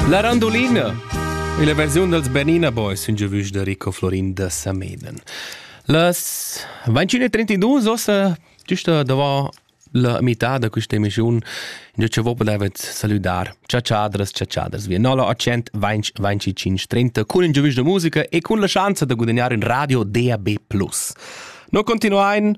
La randolina è la versiun dals Bernina Boys, un giovüsch da Rico Florin da Sameden. Las 21.32 ossa, giusta davant la mità da questa emissiun, già che voi podavet saludar ciaciadras, ciaciadras via 0800 20 25 30 con un giovüsch da musica e con la chance da guadagnare in radio DAB+. Noi continuain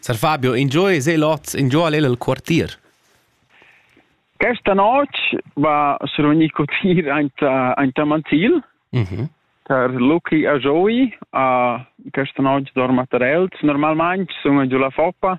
Sar Fabio, ingio es el oz? Ingio al el il quartier? Questa noc va survegnir cotir aint, aint a Mantil per Luci a Joey. Uh, questa noc dorma tar els. Normalmain sun giù la Foppa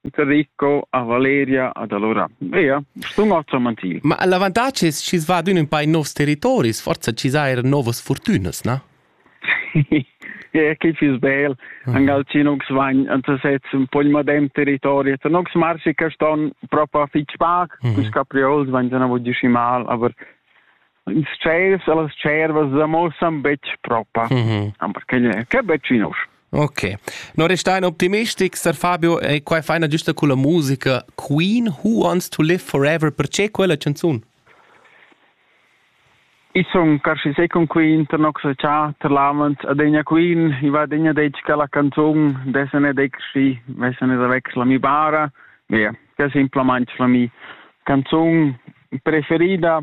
Rico, a Valeria, ad allora. Ea, stun otra mantil. Ma l'avantatg es chi's va adün ün pa in novs territoris, forza chi sa eir novas fortünas, na? Ja, che fiss bel. Angal ci nux vagn anta sez un pogn madem territori, et nux marsi che ston propo fitg pac, mm -hmm. cus capriols vagn se na voglio mal, aber ils tschels e las tschervas da mo san betg propa, mm -hmm. aber che, che betg in usch. Ok, non restai optimistics, Sir Fabio, e qua è faina giusta con la musica Queen Who Wants to Live Forever, perché quella canzone? I son carsi sei con Queen, ter noxa cha, ter lamens, adegna Queen, i va degna dec che la canzon, desene decsi, vesene da vex la mi bara, via, che simpla manch la mi canzon preferida